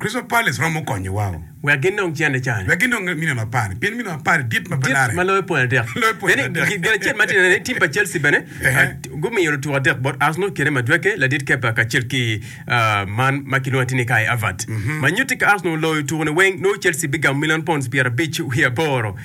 Crystal Palace romo konyo wa o. Wek gin dong cente cani. Wek gin dong milion apar. Pien milion apar dit ma pe larre. Dit ma loyo pwony adek. Loyo pwony adek. Bene gin acel ma tye-ni ni tim pa Chelsea bene gumiyo lutuku adek bot Arsenal kede Madueke, ladit Kepa kacel ki man ma kilwongo atir ni Kai Havertz. Ma nyutti ka Arsenal oloyo tukune weng, nongo Chelsea bigamo milion pounds pyerabic wiye aboro.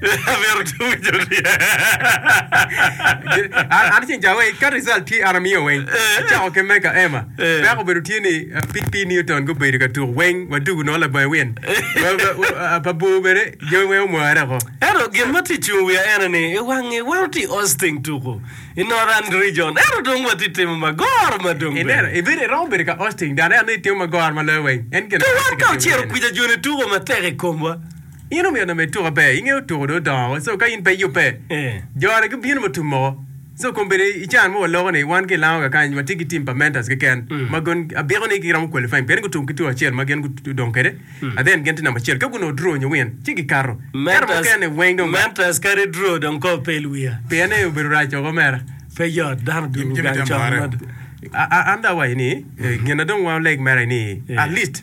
Amito timo joriya. An an ceng ca wai ka result tye an amiyo weng acako ki me ka Emma peko obedo tye ni uh, PP Newton gubedo ka tuk weng wadugu nongo labonge win Wa- wa- wa- uh, pa bor bene jami weng omware ko Ento gin ma tye cung wiya ene ni i wangi wan watye i Austin tuku i Northern Region ento dong watye timo magor ma dong ineno bene. ibedo iromo bedo ka hosting dano anongo itimo magor ma loyo weng en gin Ka wan ka ocito kwija joni tuko matek i komwa In omiyo onongo i tuka pe ingeyo tuko dong odongo woko so ka in pe iyubbe jore gibino ma tum moko so kombeddi i can mo waloko ni wan ki i Lango kakany watye ki team pa Mentors keken ma gin abiko ni giromo qualifying pien gutum ki tuko acel ma gin gudong kwede and then gin tye number acel ka gunongo draw nyo win ci gikato ento mukene weng dong Mentors kadi draw dong kor pe ilwiya. Pien ni obedo rac woko mere. Pe yot dano dul gang con mada. An dong awaco ni gin na dong wan oleg mere ni at least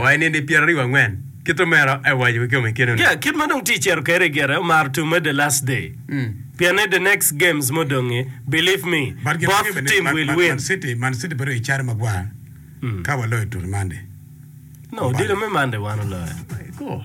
wa i nindi pyeraryo angwen. Kit omera awaco kikome i keno ni. Yeah, kit ma dong tye cito kede i gire omaro tum me the last day. Pien ni the next games mo dongi believe me But gin both mege team will win. Man City, Man City bedo i caro magwar ka waloyo tutu Monday. No, odilo me Monday wan oloyo.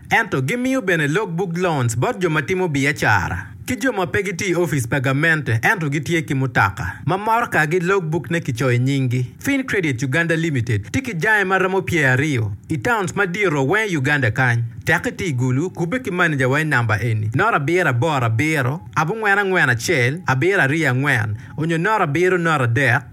Ento gimiyo bene log buk loans bot jo ma timo biacara ki jo ma pe gitye i opic pa gamente ento gitye ki mutoka ma morkagi log bukne kicoyo nyinggi. Fincredit Uganda Limited tye ki jange ma romo pyer aryo i towns madito weng i Uganda kany. Tek iti i Gulu, kubbe ki maneja wa i namba eni, noto abiro aboro abiro, abongwen angwen acel, abiro aryo angwen, onyo noto abiro noto adek.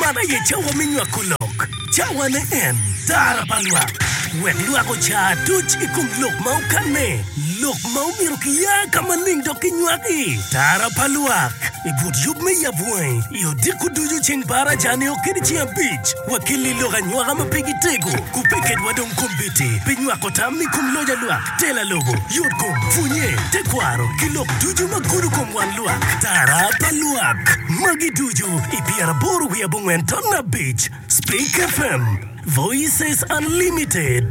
Man aye cawa me nywako lok, cawane en tara pa lwak, wek lwak oca aduc i kom lok ma okanne, lok ma omyero kiya ka maleng dok kinywaki. Tara pa lwak, I but yub me yab wangi, i odiko ducu ceng pa araca-ni okedi ceng abic. Wakelli i lok anywaka ma pe gitego, ku pe kedwa dong kombeddi pi nywako tam i kom loc alwak, tela lobo, yotkom, pwonye, tekwaro, ki lok ducu ma gudo kom wan. Lwak atara pa lwak magi ducu i pyeraboro wiye abongwen ton abic Speak FM, Voices Unlimited.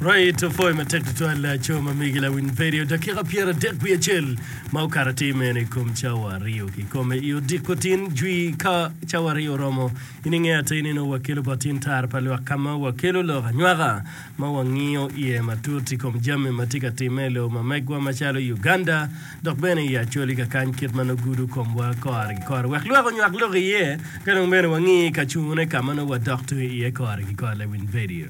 Right opoyo matek tutwal laco ma migi lawiny pedio dakika pyera dek wiye acel ma okato atir mene i kom cawa aryo ki kome i odiko tin jwi ka cawa aryo oromo In ingeyo atir ni nongo wakelo bot in tar pa lwak ka ma wakelo lok anywaka ma wangiyo iye matut i kom jami ma tye ka timme i lobo ma megwa macalo Uganda dok bene i Acholi ka kany kit ma nongo gudo komwa kore ki kore wek lwak onywak lok iye ka dong bene wangi ka cune ka ma nongo wadok tung iye kore ki kore lawiny vedio.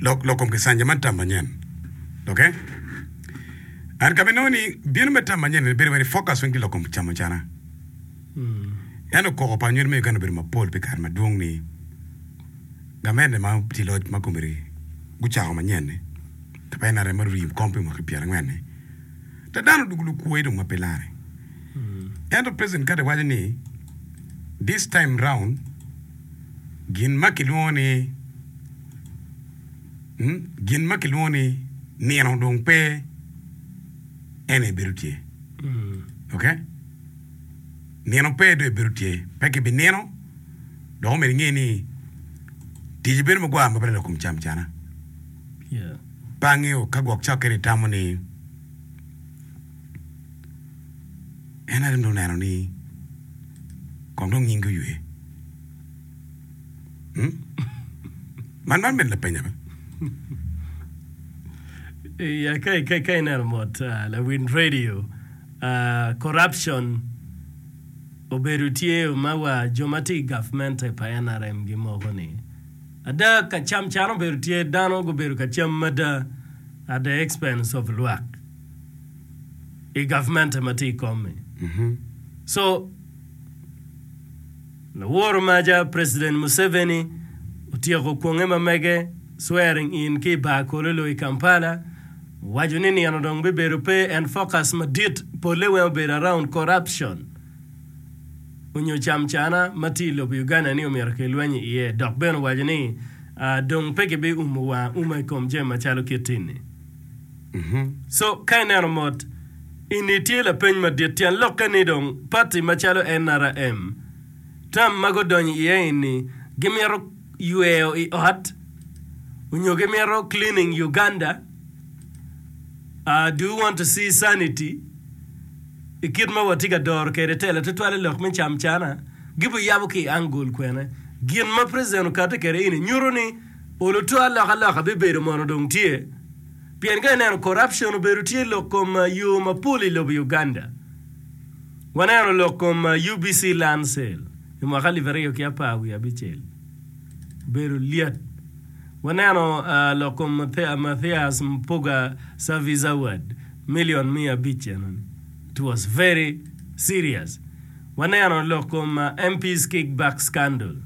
Lok, lok kom Kisanja man tam manyen. Oke? And ka binongo ni bino me tam manyen ni bedo wai ni focus weng tye lok kom camo cana. Ento koko pa anywel me Uganda obedo mapol pi kare madwong ni gamente ma tye loc ma komiti gucako manyen ni kapa NRM ma ruri kom pi mwaki pyera ngwen ni da dano odugu lukwoyi dong ma pe lare. Ento President Carter waco ni this time round gin ma kilwongo ni gin ma kilwongo ni nino dong pe en aye bedo tye. Ok? Nino pe dong ebedo tye. Pe kibinino dok omyero inge ni tic bedo magwar ma bene lakum cam cana. Yeah. Pe angeo ka gwok cokkeni tamo ni en aye dong oneno ni kong dong nyingi oywe. Hmm? Man man bene lapenya be. Ya ka ka ka ineno mot ah, lawin radio ah, corruption obedo tye ma wa jo ma tye i gavmente pa NRM gimoko ni ada ka cam can obedo tye dano gubedo ka cam mada at the expense of lwak. i gavmente ma tye i kom-mi. Co laworo maca President Museveni otyeko kwonge ma mege swearing in ki i Bar Kololo i Kampala, owaco ni nino dong bibedo pe en focus madit polle weng obedo around corruption onyo camcana ma tye i lobo Uganda ni omyero kilweny i iye dok bene owaco ni dong pe kibiumo wanga uma i kom jami macalo kit ini. So, ka ineno mot, eni tye lapeny madit. Tyen lokke ni dong pati macalo NRM, tam ma gudonyo iye eni gimito yweyo i ot onyo gimito cleaning Uganda, do you want to see sanity, i kit ma watye ka doro kwede tela tutwal i lok me camcana, gibiyabo ki i angle kwene? Gin ma president okati kwede eni nyuto ni olo twal lok aloka bibedo mono dong tye? pien ka ineno corruption obedo tye lok kom yo mapol i lobo Uganda. Waneno lok kom UBC land sale i mwaka alip aryo ki apar wiye abicel obedo lyet. Waneno lok kom Mathias Mpuga service award million miya abic enoni it was very serious. Waneno lok kom MP's kick back scandal.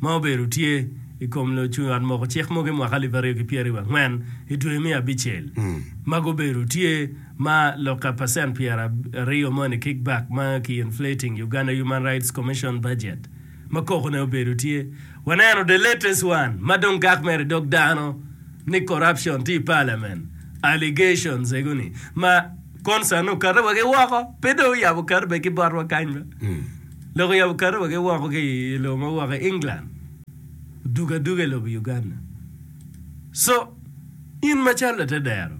ma obedo tye i kom lucung ot moko cik mogo i mwaka alip aryo ki pyeraryo wa ngwen i dwe me abicel ma gubedo tye ma lok ka percent pyera aryo money kick back ma ki inflating Uganda human rights commission budget ma koko ne obedo tye waneno the latest one ma dong gak mere i dog dano ni corruption tye i parliament allegations ego ni ma concern okato wa ki woko pe dong oyabo okato bene ki botwa kany ma. Lok oyabo kato wa ki woko ki i lobo ma woko i England, odugo aduga i lobo Uganda. Co, in macalo latedero,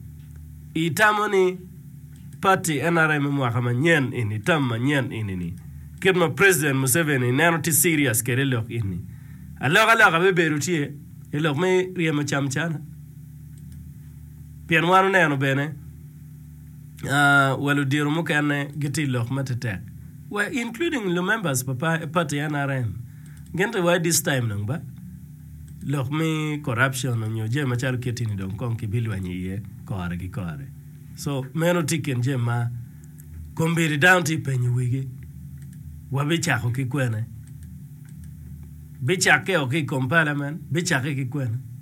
itamo ni pati nrm me mwaka manyen eni, tam manyen eni ni, kit ma President Museveni neno tye serious kede i lok eni, aloka loka bibedo tye i lok me ryemo cam cana? Pien wan oneno bene. wa ludiro mukene gitye i lok ma tetek wa including lu members pa party nrm gin to wa this time dong ba lok me corruption nyo jami macalo kiti ni dong kong kibi lweny iye kore ki kore so meno tye kin jami ma kombedi dano tye penyo wigi wa bi cako ki kwene bi cake o ki kom parliament bi cake ki kwene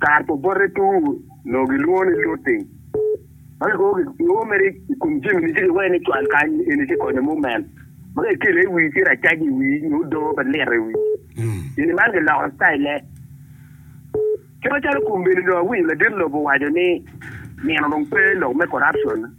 Kare pa obote tum onongo gilwongo ni looting ma kikobo mere i kom jami ni ci kiwene ni cwal kany eni ci konyo mumen ma ka ikele i wii ci racaji i wii nyo odoo pe lito i wii. Gini man kiloko citayile. Ki macalo kombeddi dong awinyo ladit lobo owaco ni nino dong pe lok me corruption.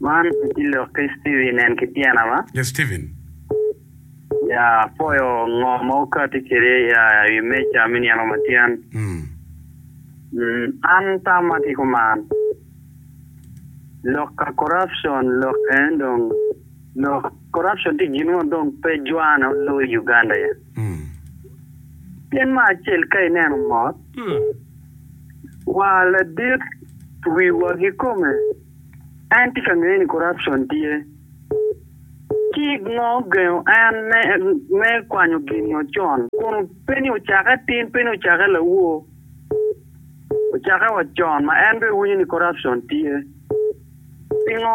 Man aye lok ki Steven en ki tyena wa. Yes Steven. Ya apoyo ngo ma wukati kwede ya i wi meja me nino ma tyen. An tam ma ki kuman lok ka corruption lok en dong lok corruption tye gin mo dong pe jwane olo i Uganda ya. Pien me acel ka ineno mot wa ladit wiwa ki kome. En tye ka ngeye ni corruption tye. Cik mo gengo en me me kwanyo gin nyo con. Kun pe ni ocake atin, pe ni ocake lawor. Ocake wa con ma en bene winyo ni corruption tye. Pingo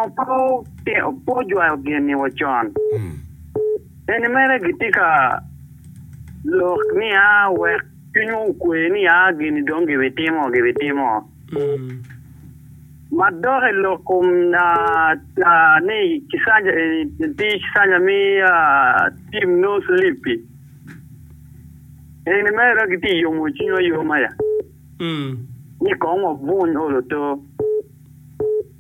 pe otino pe ojwayo gin ni wa con. Eni mere gitye ka lok ni a wek cwinywa okwe ni a gini dong gibitimo gibitimo. Ma dok i lok kom ni tic kanya mi tim nongo cilipi, eni mere dok gitye ka yomo cwinywa ayoma ni kong wabuny olo to.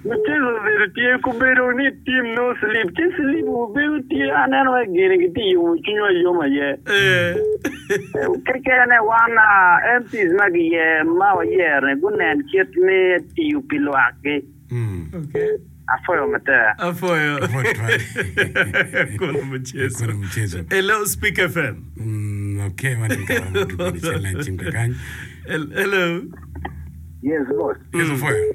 Mucele obedo tye ku bedo ni tim nongo slip ci slip wu bedo tye aneno wai gini ki tye yomo cwiny wa yom aye kekene wan MPs ma gi yer ma wa yero ni gu nen kit me tiyo pi lwak gi afoyo matek. Afoyo kono muchezo. Hello speaker FM. Mm ok wan tye ka romo ki kodi cel na cim kakany. Hello. Yes boss. Yes afoyo.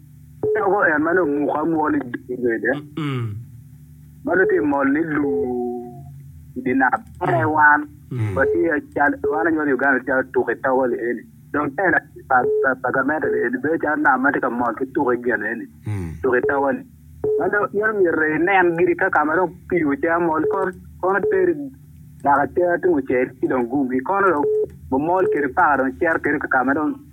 Dako en ma nongo muke amuka ni dul wede ma nongo tye mol ni luu i dye nam tere wan watye cal wan anywali i Uganda tye calo tuko i togo lieni dong te latin pa gamente lieni bedo calo nam ma tye ka mol ki tuko i gin eni tuko i togo ni ma nongo in omyero inen giri ka ka ma dong pii ocea mol kor kono teri naka cere tungcel ci dong gum ikono dong omol kiri paka dong cito kiri ka ka ma dong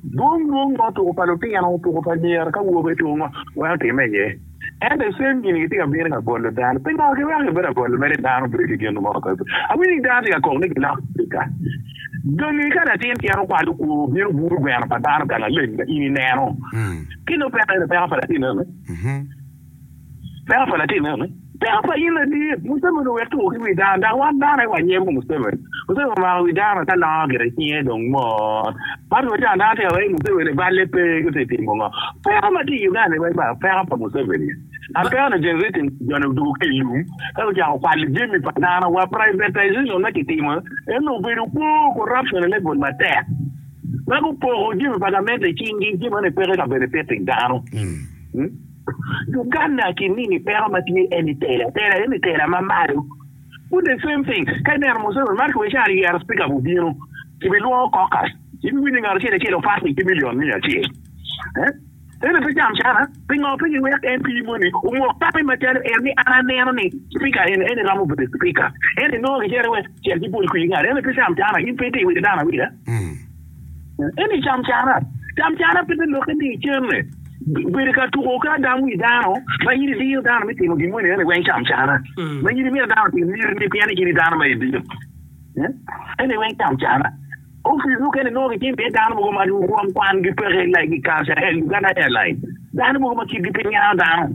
Dwong dwong ma otuko pa lutino, otuko pa anyira ki awobe tung ma weko timme iye. Ento i cem gini gitye ka bino ka bolo dano. Pi ngo giweko gibedo ka bolo mere dano bedo ki gin mo kakato? Awinyo ni dano tye ka kok ni giloko Africa. Dongi ka latin tyero kwalo kwo obino buru gweno pa dano ka laleng ma in ineno, kine opeko aye lupeko pa latinone. Peko pa latinne eni? Peko pa in ladit. Museveni owek tuko ki wi dano dok wan dano aye wa nyem ki Museveni. Museveni omako wi dano ka nongo gire cinge dong mot. Man wa can dano tika wai Museveni balle pe ki ti timo ngo. Peko ma ti i Uganda-ni wai ba peko pa Museveni. An peko ni generation joni odoko ki ilum ka gucako kwalo jemi pa dano wa privatization ma ki timo eni obedo kwo corruption i level matek ma gupoko jemi pa gamente i cing gi jemi meno peko i kabedo i pito i dano. Uganda ki mini peko ma tye eni tela tela eni tela ma malo pud the same thing ka ineno Museveni mar ki wai caro yero speaker bu bino ki bi lwongo caucus ibi winyo ngat acel acel opak ni ki million miya acel eh eni pe jam cana pingo pe gi wek MP moni omok tapi ma calo en ni an aneno ni speaker eni eni romo bedo speaker eni nongo ki cito iwe cel ki bol kwir ngat eni pe jam cana in pe iti witi dano awita. Eni cam cara. Cam cara pe bilokke ni icenne. Bedo ka tuko ki adam wi dano ma in idiyo dano me timo gin moni ene weng cam cara. Mm. Ma in imito dano otim niri ni pien ni in dano ma idiyo. Eh? Ene weng cam cara. Ofis mukene nongo gitimo iye dano mogo ma rwom kwangi peke like i Kacel, Uganda Airline. Dano mogo ma kitgi pe ngiano dano.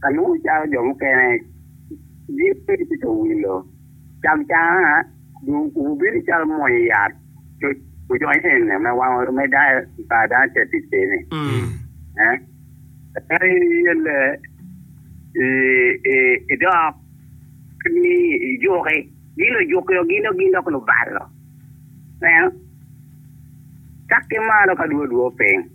Ka nongo cawa jo mukene gin tye ka wilo cam canga, wubino calo mwonyo yat coc ojonyo enne me wango me dayo i par dano teticene. Ento in iyelle idok ni ijuki, gin ojuki o gin dok gin dok lubalo. Ineno? Cak ki malo ka dwe odwor piny.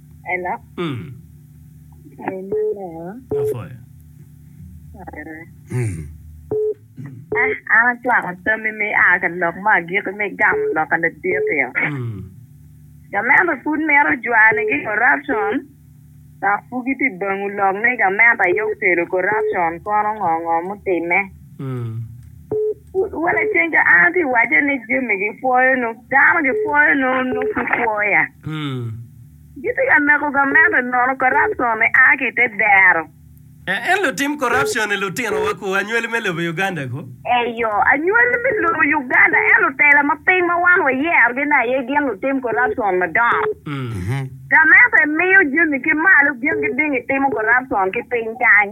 Ela. Mm. Haleluya. Apoi. Eh, an acwako tammi me a ka lok me agikki me gamo loka laditi-o. Mm. Gamente pud mito jwanigi corruption, dok pud gitye bango lok ni gamente aye okelo corruption kono ngo ngo mutimme. Mm. Wele ceng ka an atye wace ni jami gipwoyo nyo dano gipwoyo nyo nyo ki pwoya. Gitye ka meko gamente nono corruption ni a ki te dero. En lutim corruption ni lutino wa ku anywali me lobo Uganda ko. Eyo anywali me lobo Uganda en lutela ma piny ma wan wa yero gi ne aye gin lutim corruption madongo. Gamente miyo jami ki malo gin giding gitimo corruption ki piny kany.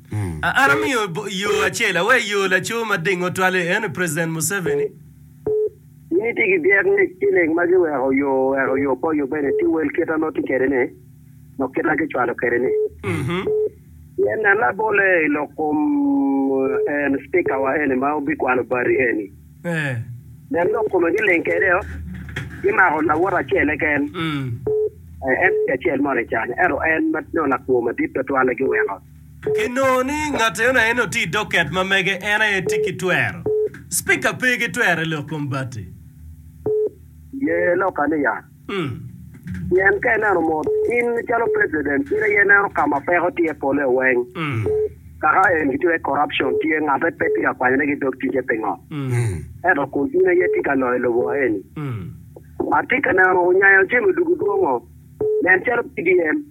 An amiyo yo acel, aweyo yo laco ma dingo twal-li, en ni President Museveni. Ni ti ki byek ni ciling ma giweko yo oweko yo po yo bene ti wel kit a nongo ti kede ni lok kit a gicwalo kede ni. Pien nen labole i lok kom en Speaker wa eni ma obi kwalo bati eni. Nen lok kome giling kede o, gimako lawote acel keken, en ti acel mo ni can, ento en ma nongo lakwo madit twatwal-li giweko. Ki nongo ni ngat eno aye nongo tye i docket ma mege en aye tye ki twero. Speaker pe ki twero i lok kom bati. Ye lok ane ya. Pien ka ineno mot, in calo president in aye ineno ka ma peko tye pole weng. Kaka en ki tye corruption tye ngate pe tye ka kwanyone ki dog ticce pingo? Ento kun in aye itye ka loyo lobo eni. Atye ka neno onyanyo jami dugu dwongo. Nen calo PDM.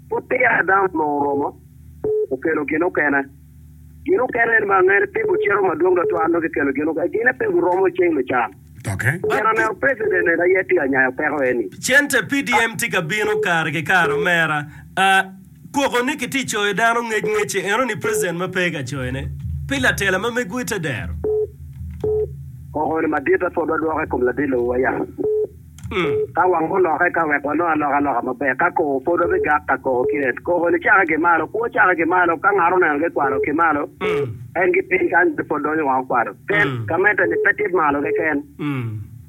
Pud peya Adam onongo oromo okelo gin okene. Gin okene eni ma angene pe gucito madwong twatwal nongo kikelo gin okene. Gine pe guromo i ceng me can. Pien aneno president eni aye tye ka nyayo peko eni. Cente PDM tye ka bino kare ki kare omera. Koko ni kitye coyo dano ngec ngecce eno ni president ma pe ka coyo ne pi latela ma mego ite dero. Koko ni madite pud wadwoko i kom ladit lobo wa ya. Ka wang olokke ka wek walok aloka loka maber, ka koko pwod wabigak ka koko ki en. Koko-ni cake ki malo, kwo cake ki malo, ka ngat oneno gikwalo ki malo, en ki piny kany pe pwod donyo wang okwalo. Kel, Gamette-ni pe tye malo keken.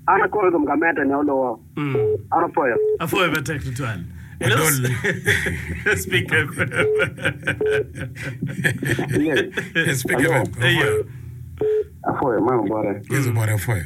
An akobo i kom gamette-ni, oluwo. An opwoyo. Apwoyo matek tutwal. Adol. Speaker Speaker Alo. Apwoyo. Apwoyo. Man obote. Yes obote apwoyo.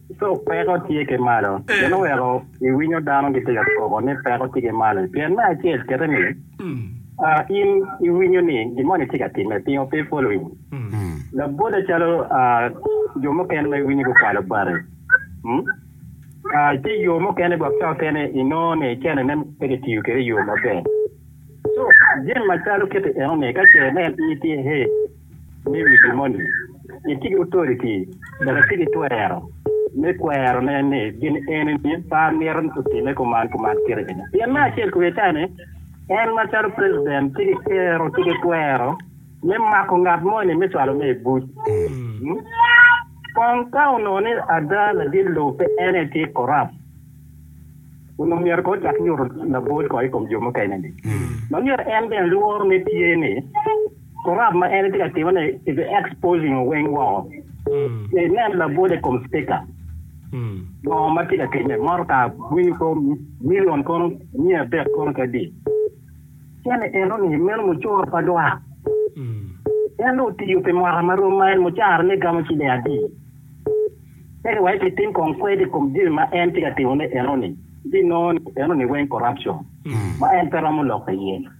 Ka peko tye ki malo, meno weko iwinyo dano gitye ka koko ni peko tye ki malo. Pien me acel kite ni, in iwinyo ni gin moni tye ka timme, pingo pe ipwolo in? Labote calo jo mukene ma iwinyo gukwalo bati, tye yo mukene gwok ca okene inongo ni cenene pe kitiyo kwede i yo maber. So, jami macalo kiti enoni ka ce nen in itye hee, ni wi gi moni, itye ki otoriti dok itye ki twero me kwerone ni gin eni ma mito ni otime kuman kuman kit eni. Pien me acel kwiye ka ni en macalo president tye ki kero ki ki twero me mako ngat moni me cwalone i buc. Kong ka onongo ni ada ladit lobo pe en aye tye corrupt, onongo myero kong ocak nyuto labol kong i kom jo mukene-ni. Ma myero en bene lworo ne tye ni, Korap ma en itye ka timo ni is exposing oweng woko. I nen labwod i kom speaker. Ngo ma tye ka time? Motor car winyo ko million kono mia adek kono kadi. Cen ni eno ni meno mucoro pa dwak. En do otiyo pi mwaka ma rom ma en mucara ne gamo ciling adi. Tek wa ki tim kong kwed i kom jami ma en tye ka timo ne eno ni. Di nongo eno ni weng corruption. Ma en pe romo lok iye.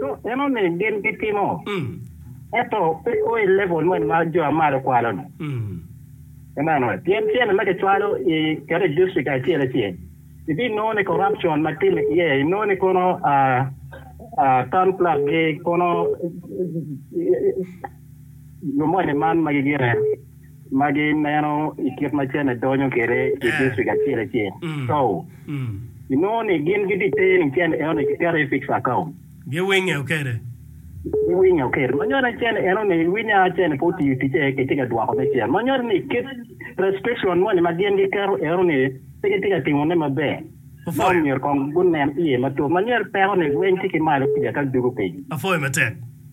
Co enoni gin gitimo, ento pe o i level moni ma jo ma malo kwalo-ni. Amen. Pien tyene ma kicwalo i kete i district acel acel, ibinongo ni corruption ma timme iye, inongo ni kono ah, ah, town clerk-gi kono jo moni man magi gire. ma gineno i kit ma cene donyo kwede i distrik acel acel. Cow. Inongo ni gin gidite ni cen enoni kiketo i fixed account. Giwinyo kwede. Giwinyo kwede. Ma nyuto ni cen enoni winya cene pe otiyo ticce, kitye ka dwoko me cen. Ma nyuto ni kit restriction moni ma gin giketo enoni pe gitye ka timone maber. Ma omyero kong gunen iye matut. Ma nyuto ni peko-ni rweny tye ki malo kuca ka dugo piny. Apwoyo matek.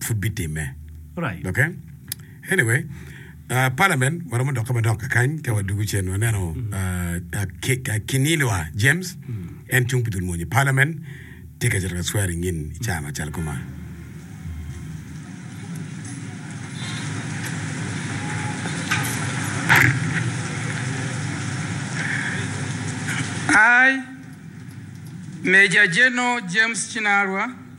pud bitimme. Right. Okay? Anyway, uh, parliament waromo dokke madok kakany ka wadugu cen waneno uh, uh, Ki- uh, Kinilwa James en cung pi dul mwonyo parliament tye ka cito ka swearing in i caa macalo kuma. I, Major General James Kinalwa,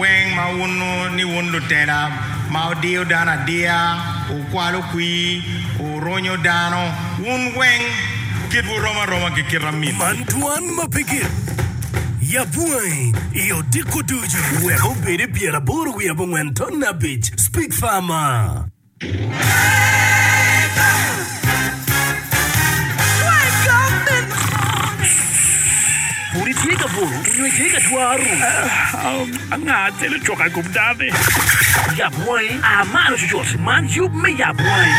Weng ma wunnu ni wun lutela ma wudiyo dano adiya, wukwalo kwir, wurunyo dano, wun weng kitwu rom aroma ki kit amitwu. Man twan ma pe gin. Yab wangi i odiko ducu. Wek obed i pyeraboro wiye abongwen ton abic. Speak Farmer. Pud itye ka bolo nyo itye ka twaro? Anga acel ocoko i kom dano-ni? Yab wangi, a malo cucut, man yub me yab wangi.